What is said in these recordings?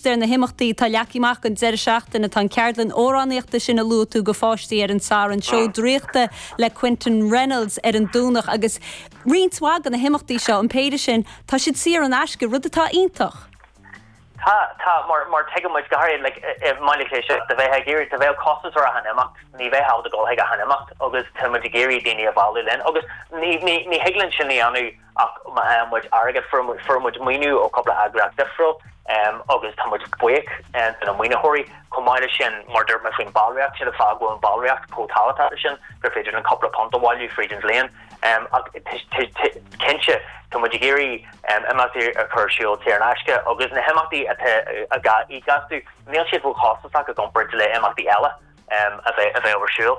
Ar na himeachtaí atá leagtha amach don deireadh seachtaine, tá an ceardlann amhránaíochta sin a luaigh tú do pháistí ar an tSatharn, seó draíochta le Quinton Reynolds ar an Domhnach agus roinnt mhaith de na himeachtaí seo, an péire sin, tá siad saor in aisce, rud atá iontach. Tá, tá, mar tuigeann muid, go háirithe i mBaile Átha Cliath anseo, dá mbeifeá ag iarraidh, dá mbeadh costas ar achan imeacht, ní bheadh in ann a dhul chuig achan imeacht agus tá muid ag iarraidh daoine a mhealladh linn agus ní thig linn sin a dhéanamh, ach má fhaigheann muid airgead fuair muid maoiniú ó chúpla eagraíocht difriúil agus tá muid buíoch do na maoinitheoirí. Chomh maith leis sin, mar a dúirt mé faoin ballraíocht, sin an fáth go bhfuil an ballraíocht chomh tábhachtach sin gur féidir linn cúpla punt a bhailiú fríd an bhliain ach cinnte tá muid ag iarraidh imeachtaí a chur ar siúl saor in aisce agus na himeachtaí atá ag costas níl siad róchostasach i gcomparáid le himeachtaí eile a bheadh ar siúl.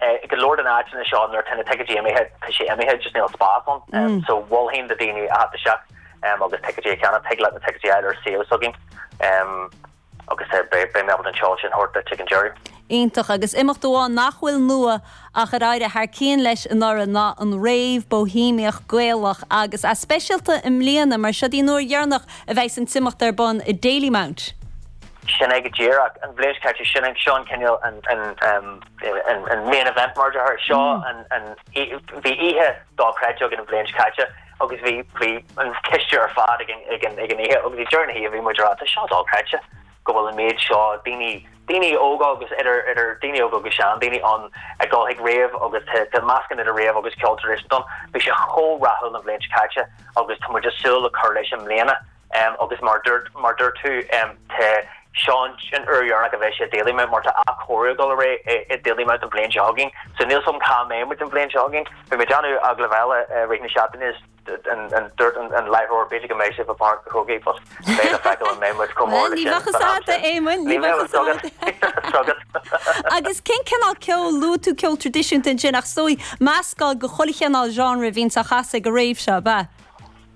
I go leor de na áiteanna seo nuair atá na ticéidí imithe tá sé imithe just níl spás ann so mholfainn do dhaoine a theacht isteach agus ticéidí a cheannach. Tig leat na ticéidí a fháil ar an suíomh s'againn agus beidh mé ábalta an seoladh sin a thabhairt duit ag an deireadh. Iontach, agus imeacht amháin nach bhfuil nua ach ar éirigh thar cinn leis anuraidh ná an rave Bóihéamach Gaelach agus an-speisialta i mbliana mar seo í an uair dheireanach a bheas an t-imeacht ar bun i Dalymount. Sin é go díreach, an bhliain seo caite sin é, seo an cineál an an main event mar a déarfá seo an bhí oíche dochreidte againn an bhliain seo caite agus bhí bhí an coiste ar fad ag an ag an ag an oíche agus ag deireadh na hoíche bhí muid ag rá tá seo dochreidte go bhfuil an méid seo daoine daoine óga agus idir idir daoine óga agus seandaoine ann ag dul chuig rave agus tá tá meascán idir rave agus ceol traidisiúnta ann bhí sé chomh rathúil an bhliain seo caite agus tá muid ag súil le cur leis i mbliana. agus mar mar dúirt tú tá seans an uair dheireanach a bheidh sé i Dalymount mar tá athchóiriú ag dul ar aghaidh i Dalymount an bhliain seo chugainn so níl fhios agam cá mbeidh muid an bhliain seo chugainn. Bhí mé ag déanamh agallamh eile i rith na seachtaine is dúirt an láithreoir b'fhéidir go mbeidh sé i bPáirc an Chrócaigh but beidh le feiceáil an mbeidh muid chomh mór leis sin san am sin. Bhuel ní bheadh fhios agam Éamonn, ní bheadh fhios agam. Ní bheadh fhios agam. Agus cén cineál ceoil, luaigh tú ceol traidisiúnta ansin ach is dóigh meascán de chuile chineál genre a bhíonns á chasadh ag an rave seo, ab ea?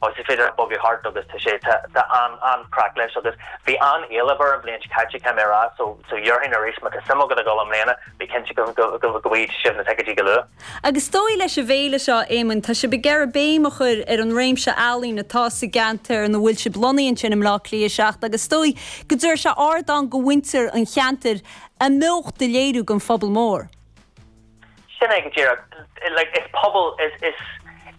Tá, is féidir leat bogadh thart agus tá sé, tá, tá an, an-chraic leis agus bhí an-éileamh air an bhliain seo caite, caithfidh mé a rá, so, so déarfainn arís má tá suim agat a dhul i mbliana, bí cinnte go, go, go, go bhfaighidh sibh na ticéidí go luath. Agus is dóigh leis an bhféile seo, a Éamoinn, tá sibh ag iarraidh béim a chur ar an réimse ealaíon atá sa gceantar ina bhfuil sibh lonnaithe ansin i mBleá Cliath 7 agus is dóigh go dtabharfaidh sé ardán do mhuintir an cheantair a mbeocht a léiriú don phobal mór. Sin é go díreach. Like, is pobal, is, is,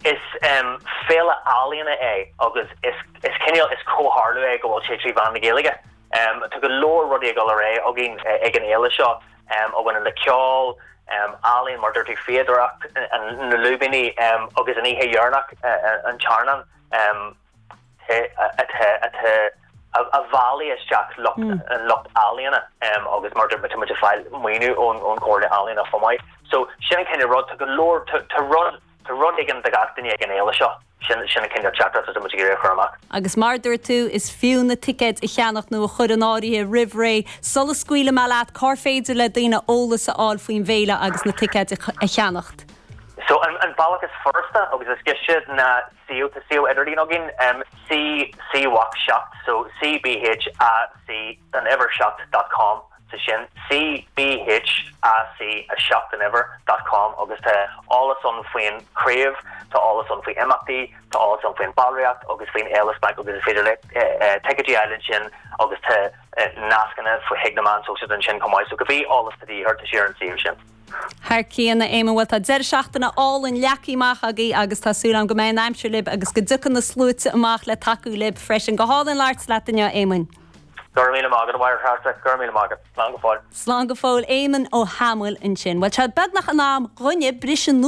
is em féile ealaíona é agus is, is cineál, is comhtharlú é go bhfuil sé trí mheán na Gaeilge. Em, tá go leor rudaí ag dul ar aghaidh againn ag an fhéile seo, em, a bhaineann le ceol, em, ealaíon mar a dúirt tú, fíodóireacht, na lúibíní, em, agus an oíche dheireanach, an t-airneán, em, a bhailigh isteach lucht an lucht ealaíona agus mar dúirt muid ag fáil maoiniú ón gComhairle Ealaíona chomh maith. So sin an cineál rud. Tá go leor, tá rud, tá rud éigin do gach duine ag an fhéile seo. Sin, sin an cineál teachtaireacht atá muid ag iarraidh a chur amach. Agus mar dúirt tú, is fiú na ticéid a cheannach nó a chur in áirithe roimh ré sula scaoilfidh mé leat cár féidir le daoine eolas a fháil faoin bhféile agus na ticéid a cheannacht. So an bealach is furasta agus is gaiste ná So tá suíomh idirlín againn, C, C BhÁC 7, so C, B, H, A, C, an uimhir 7 dot com so sin, C, B, H, A, C, 7 an uimhir dot com agus tá eolas ann faoin chraobh, tá eolas ann faoi imeachtaí, tá eolas ann faoin ballraíocht agus faoin fhéile smaointe agus is féidir leat ticéidí a fháil ansin agus tá nascanna chuig na meáin sóisialta ansin chomh maith, so cibé eolas atá de dhíth ort tá sé ar an suíomh sin. Thar cionn, a Éamoinn, bhuel, tá deireadh seachtaine álainn leagtha amach agaibh agus tá súil agam go mbeidh an aimsir libh agus go dtiocfaidh na sluaite amach le tacú libh freisin. Go hálainn labhairt leat inniu, a Éamoinn. Go raibh míle maith agat, a Mháire-Threasa. Go raibh míle maith agat. Slán go fóill. Slán go fóill, Éamonn Ó hAdhmaill ansin. Bhuel, tá sé beagnach in am dúinn briseadh